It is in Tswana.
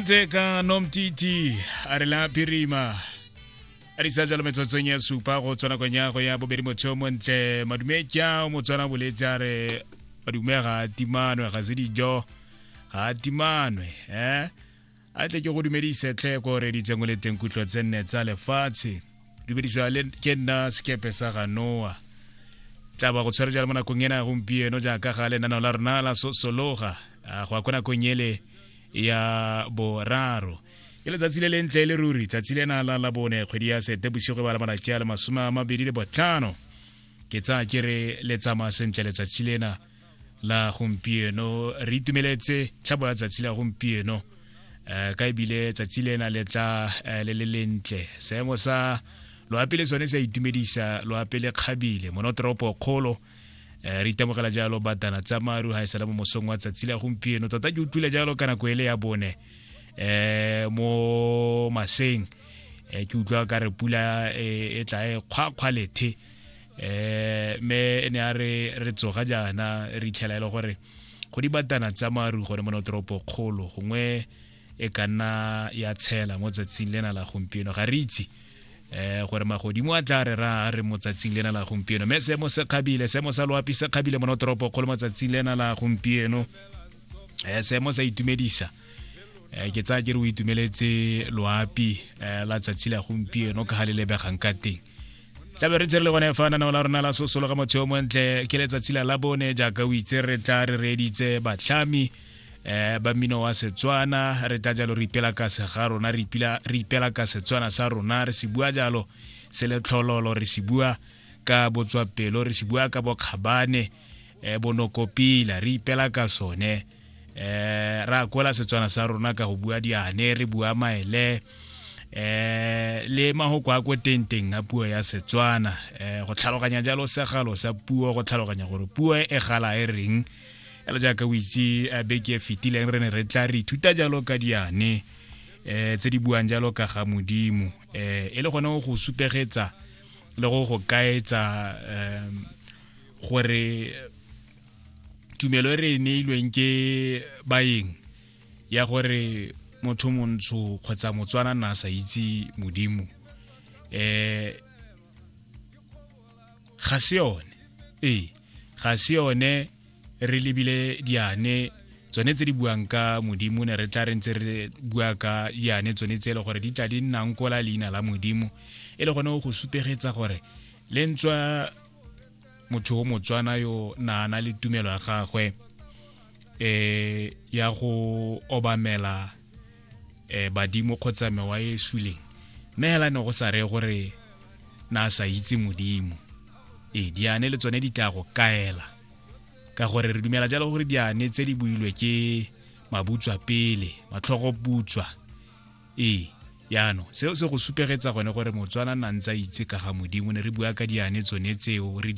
teka nomtiti a re la phirima a di sa jalo metsotsong ya supa go tswana kong ya go ya bobedi motho mo ntle madumekya o motswana boletse a re madume ga a timanwe ga se dijo ga a timanwe eh a tle ke go dumedise tlhe ko reditseng o le teng kutlwa tse nne tsa lefatshe dumedisa le ke nna sekepe sa ga noa tla ba go tshwere jalo mo nakong ena gompieno jaaka ga lenaneo la rona la sosologa go ya ko nakong ele ya boraro ke letsatsi le le ntle le ruri tsatsi lena la la bone kgwedi ya sete bosigo ba la malatsi a le masome a mabedi le botlhano ke tsaya ke re le tsamaya sentle letsatsi lena la gompieno re itumeletse tlhabo ya tsatsi la gompieno um ka ebile tsatsi le na le tla eh, le le lentle seemo sa loape le sone sa itumedisa loape le kgabile monotoropo kgolo eh, re itemogela jalo batana tsa maru ga e sala mo mosong wa tsatsi la gompieno tota ke utlwile jalo ka nako ele ya bone um mo maseng ke utlwa ka re pula e tla e kgwakgwa lethe eh me e ne a re re tsoga jaana re itlhela e le gore go di batana tsa maru gore mo toropo kgolo gongwe e ka nna ya tshela mo tsatsing lena la gompieno ga re itse eh gore magodimo a tla re ra re motsatsing lena la gompieno me se mo se kgabile se mo sa loapi se kgabile mo toropo kgolo mo tsatsing lena la gompieno eh se mo sa itumedisa eh ke tsaya ke re o itumeletse loapi eh, la tsatsi la gompieno ka ga le lebegang ka teng tlabe re tsere le gone fa nanao la rona la sosolo ga motsheo montle ke letsatsi la la bone jaaka o itse re tla re reeditse batlhami um ba mmino wa setswana re tla jalo re ipela kase ga rona re ipela ka setswana sa rona re se bua jalo se le tlhololo re se bua ka botswapelo re se bua ka bokgabane um bonokopila re ipela ka sone eh ra kwela setswana sa rona ka go bua diane re bua maele eh le mahoko a ko tenteng a puo ya setswana eh go tlhaloganya jalo segalo sa puo go tlhaloganya gore puo e gala e reng ele jaaka o itse eh, beke e fetileng re ne re tla re ithuta jalo ka diane eh tse di buang jalo ka ga modimo eh e le gone go supegetsa le go go kaetsa eh, gore tumelo e re e neilweng ke baeng ya gore motho montsho kgotsa motswana na sa itse modimo um ga se yone ee ga se yone re lebile diane tsone tse di buang ka modimo ne re tla re ntse re bua ka diane tsone tse e le gore di tla di nnang kola leina la modimo e le gone go supegetsa gore le ntswa motho o motswana yo naana le tumelo ya gagwe eh ya go obamela eh badimo kgotsa mewa e suleng mme hela ne go sa re gore na sa itse modimo e diane le tsone di tla go kaela ka gore re dumela jalo gore diane tse di builwe ke mabutswa pele matlhogo butswa e yano seo se go supegetsa gone gore motswana na ntse a itse ka ga modimo ne re bua ka diane tsone tseo re